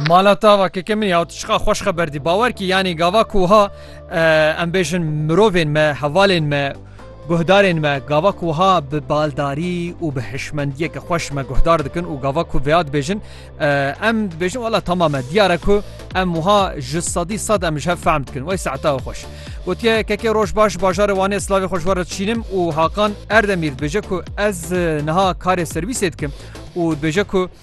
Mala tava keke min ya tu çiqa xweş xeber dî bawer kî yanî gava ku wiha em bêjin mirovên me hevalên me guhdarên me gava ku wiha bi baldarî û bi hişmendiyeke xweş me guhdar dikin û gava ku vêya dibêjin em dibêjin wela tamam e diyar e ku em wiha ji sedî sed em ji hev fehm dikin wey sehta xweş gotiye kekê roj baş bajarê wanê slavê xweş were çînim û hakan erdemîr dibêje ku ez niha karê serwîsê dikim û dibêje ku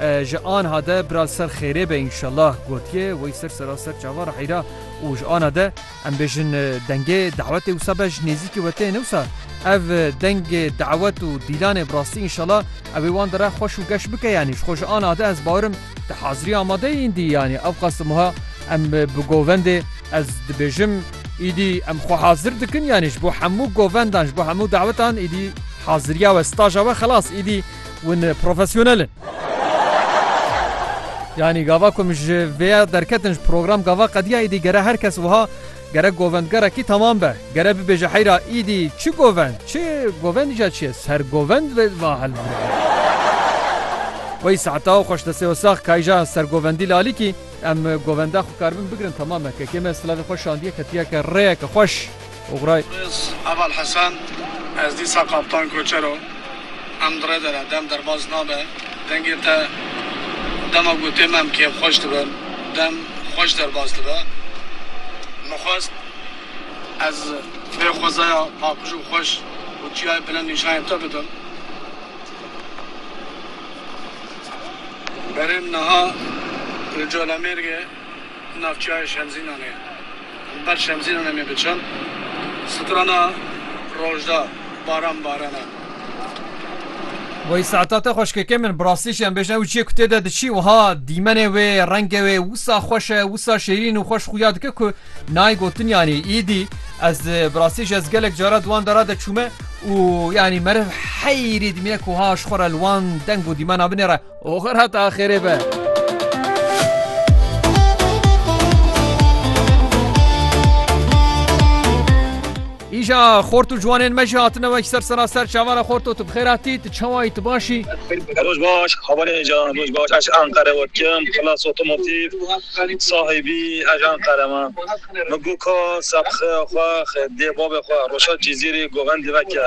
Ji anha de bira li ser xêrê be înşellah gotiye wey ser sera ser çava re heyra û ji anha de em bêjin dengê dawetê wisa be ji nêzîkî we tê ne wisa ev dengê dawet û dîlanê bi rastî înşellah ew ê wan di re xweş û geş bike yanî ji xwe ji anha de ez bawer im di hazirî amade yîn dî yanî ew qas wiha em bi govendê ez dibêjim îdî em xwe hazir dikin yanî ji bo hemû govendan ji bo hemû dawetan îdî haziriya we staja we xelas îdî Hûn profesyonel in. Yanî gava ku min ji vê ya derketin ji program gava qediya îdî gere her kes wiha gere govendgerekî temam be. Gere bibêje heyra îdî çi govend çi govendî ca çi ye ser govend ve va hilbirî. Wey saeta û xweş destê we sax kayja ser govendî lalîkî em govenda xwe karibin bigirin temam e. Kekê me silavê xwe şandiye ketiye ke rêyeke xweş. Oxray. Rêz Heval Hesen, Ez dîsa Kaptan Koçer o. Em di rê de ne. Dem derbas nabe. Dengê te dema gotê me em kêfxweş dibin. Dem xweş derbas dibe. Min xwest ez vê xwezaya paqij û xweş û çiyayê bilind nîşanê te bidim. Berê min niha li Colemêrgê. di navçeya Şemzînanê ye. Li ber Şemzînanê me bi çend strana roj da baran barana. Wey Se'ta te xweşkeke min, bi rastî jî em bêjin ew ciyê ku tê de diçî wiha dîmenê wê, rengê wê wisa xweş e, wisa şêrîn û xweş xuya dike ku nayê gotin yanî îdî. Ez bi rastî jî ez gelek caran di wan dara de çûme û yanî meriv heyrê dimîne ku wiha ji xwe re li wan deng û dîmena binêre. Oxir heta axirê be. Îja xort û ciwanên me jî hatine wek ser sera ser çavana xort û tu bixêr hatî tu çawa yî tu baş î? Roj baş hawanê îja roj baş ez ji Enqere we dikim Xilas Otomotiv sahî bî ez ji Enqere me min got ka sebxeya xwe dê bavê xwe Roşad Cîzîrî govendî veke.